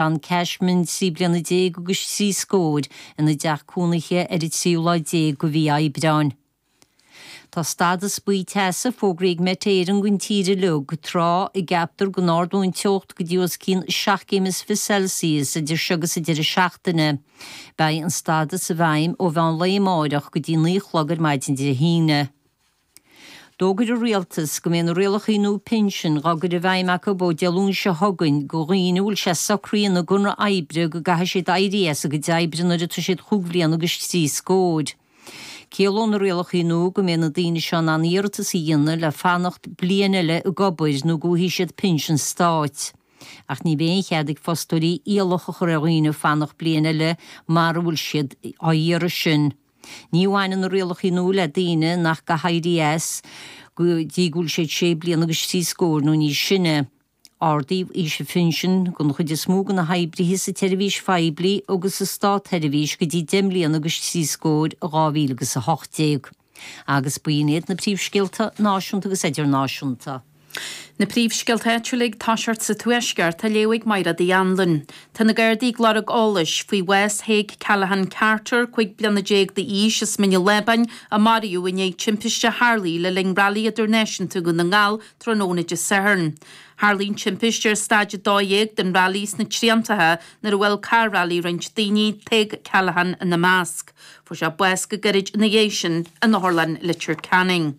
John Cashman trí bliana déag agus trí scór ina dteach cónaithe ar an tríú lá déag de mhí Aibreáin. Tá stádas buí teasa fógraí ag Met Éireann don tír uilig, tráth a gceaptar go n-ardóidh an teocht go dtí os cionn seacht gcéim is fiche Celsius idir seo agus an deireadh seachtaine. Beidh an stádas i bhfeidhm ó mheán lae amárach go dtí naoi a chlog ar maidin Dé hAoine. D'fhógair an Rialtas go mbeidh na rialacha nua pinsin dhá gcur i bhfeidhm acu ó Dé Luain seo chugainn go dhaoine a bhfuil sé socraithe ina gconradh oibre go gcaithfidh siad éirí as a gcuid oibre nuair atá siad chúig bhliana agus trí scór. Ciallóidh na rialacha nua go mbeidh na daoine seo in ann iarratas a dhéanamh le fanacht bliain eile ag obair nó go bhfaighidh siad pinsean stáit. Ach ní bheidh aon chead ag fostóirí iallach a chur ar dhaoine fanacht bliain eile mara bhfuil siad á iarraidh sin. Ní bhaineann na rialacha nua le daoine nach gcaithfidh éirí as go dtí go bhfuil siad sé bliana agus trí scór nó níos sine. Ardaíodh aois an phinsin don chuid is mó de na hoibrithe sa tseirbhís phoiblí agus sa státsheirbhís go dtí deich mbliana agus trí scór i 2018, agus b'in iad na príomhscéalta náisiúnta agus idirnáisiúnta. Na príomhscéalta áitiúla ag toiseacht sa Tuaisceart á léamh ag Maighréad Uí Annluain. Tá na Gardaí ag lorg eolais faoi bhás Thaidhg Callaghan Carter, cúig bliana déag d'aois, as Mín an Lábáin, a maraíodh i ndiaidh timpiste a tharlaigh le linn Railí Idirnáisiúnta Dhún na nGall tráthnóna Dé Sathairn. Tharlaigh an timpiste ar Stáid 12 den railí sna Triantaithe nuair a bhuail carr railí roinnt daoine, Tadhg Callaghan ina measc. Fuair sé bás go gairid ina dhiaidh sin in Otharlann Leitir Ceanainn.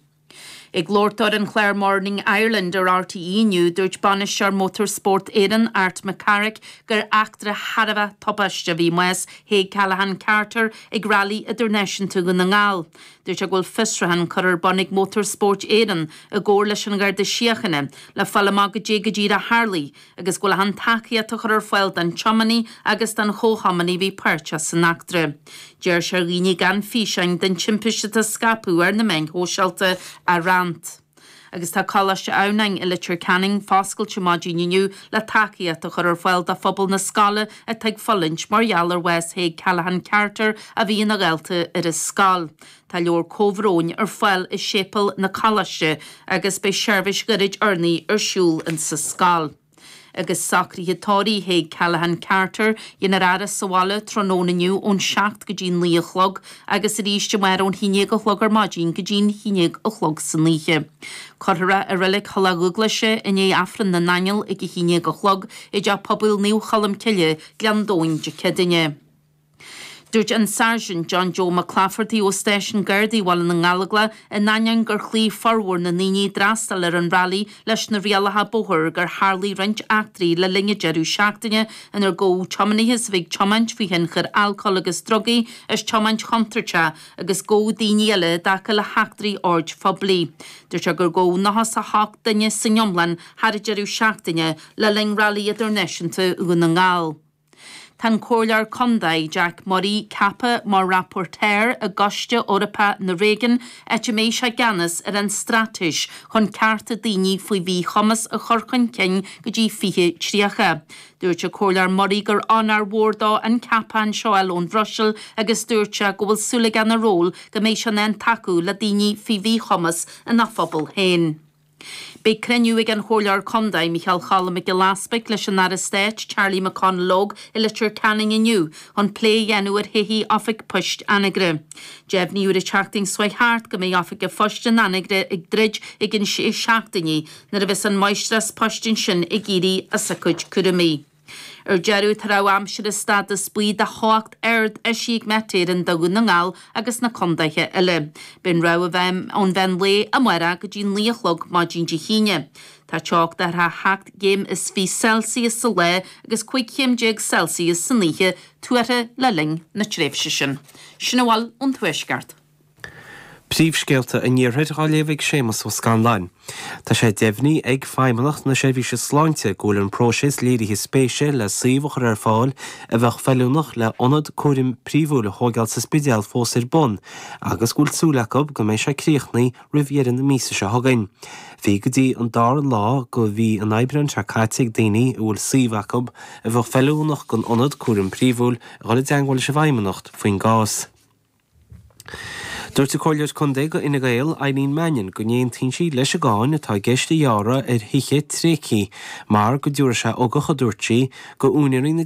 Ag labhairt dó ar an chlár Morning Ireland ar RTÉ inniu, dúirt Bainisteoir Motor Sport Éireann, Art McCarrick, gur eachtra thar a bheith tubaisteach a bhí i mbás Thaidhg Callaghan Carter ag Railí Idirnáisiúnta Dhún na nGall. Dúirt sé go bhfuil fiosruchán curtha ar bun ag Motor Sport Éireann, i gcomhar leis an Gharda Síochana, le fáil amach caidé go díreach a tharlaigh agus go bhfuil achan tacaíocht á chur ar fáil don tiománaí agus don chomhthiománaí a bhí páirteach san eachtra. D'iarr sé ar dhaoine gan físeáin den timpiste a scaipeadh ar na meáin shóisialta a roinnt. Agus tá Coláiste Adhamhnáin i Leitir Ceanainn foscailte maidin inniu le tacaíocht a chur ar fáil do phobal na scoile atá ag fulaingt mar gheall ar bhás Thaidhg Callaghan Carter a bhí ina dhalta ar an scoil. Tá leabhar comhbhróin ar fáil i Séipéal na Coláiste agus beidh seirbhís ghairid urnaí ar siúl in sa scoil. Agus socruithe tórraimh Thaidhg Callaghan Carter, déanfar a fhaire sa bhaile tráthnóna inniu ón seacht go dtí'n naoi a chlog agus arís amárach ón haon déag a chlog ar maidin go dtí'n haon déag a chlog san oíche. Cuirfear é i Reilig Thulach Dubhghlaise i ndiaidh Aifreann na nAingeal ag a haon déag a chlog i dTeach Pobail Naomh Cholm Cille, Gleann Domhain, Dé Céadaoine. Dúirt an Sáirsint John Joe McClafferty ó Stáisiún Gardaí Bhaile na nGallóglach, in ainneoin gur chloígh formhór na ndaoine a d'fhreastail ar an rally leis na rialacha bóthair gur tharlaigh roinnt eachtraí le linn an deireadh seachtaine inar gabhadh tiománaithe as a bheith ag tiomáint faoi thionchar alcóil agus drugaí as tiomáint chontúirteach agus gabhadh daoine eile i dtaca le heachtraí oird phoiblí. Dúirt sé gur gabhadh 98 duine san iomlán thar an deireadh seachtaine le linn Rally Idirnáisiúnta Dhún na nGall. Tá an Comhairleoir Contae Jack Murray ceaptha mar Rapporteur i gCoiste Eorpach na Réigiún áit a mbeidh sé i gceannas ar an straitéis chun cearta daoine faoi mhíchumas a chur chun cinn go dtí 2030. Dúirt an Comhairleoir Murray gur onóir mhór dó an ceapachán seo a fháil ón Bhruiséil agus dúirt sé go bhfuil súil aige ina ról go mbeidh sé in ann tacú le daoine faoi mhíchumas ina phobal féin. Beidh cruinniú ag an Chomhairleoir Contae, Micheál Choilm Mac Giolla Easbuig leis an Aire Stáit, Charlie McConalogue i Leitir Ceanainn inniu chun plé a dhéanamh ar thodhchaí Oifig Poist Anagaire. Deimhníodh ar an tseachtain seo thart go mbeidh Oifig an Phoist in Anagaire ag druid i gceann sé seachtainí nuair a bheas an Máistreás Poist ansin ag éirí as a cuid cúraimí. Ar deireadh, tá rabhadh aimsire stádas buí do theocht ard eisithe ag Met Éireann do Dhún na nGall agus na contaetha eile. Beidh an rabhadh i bhfeidhm ón mheán lae amárach go dtí naoi a chlog maidin Dé hAoine. Tá teocht de thar sheacht gcéim is fiche Celsius sa lá agus cúig chéim déag Celsius san oíche tuartha le linn na tréimhse sin. Sin a bhfuil ón Tuaisceart. Príomhscéalta an Iarthair á léamh ag Séamas Ó Scanláin Tá sé deimhnithe ag Feidhmeannacht na Seirbhíse Sláinte go bhfuil an próiseas léirithe spéise le suíomh a chur ar fáil a bheadh feiliúnach le ionad cúraim príomhúil a thóigeáil sa Spidéal fós ar bun agus go bhfuil súil acu go mbeidh sé críochnaithe roimh dheireadh na míosa seo chugainn. Bhí go dtí an dara lá de mhí an Aibreáin seo caite ag daoine a bhfuil suíomh acu a bheadh feiliúnach don ionad cúraim príomhúil a dhul i dteangmháil leis an bhFeidhmeannacht faoin gcás. Dúirt an Comhairleoir Contae do Fhine Gael, Eileen Mannion go n-aontaíonn sí leis an gcáin atá i gceist a ghearradh ar thithe tréigthe mar go dtabharfaidh sé ugach, a dúirt sí, do úinéirí na.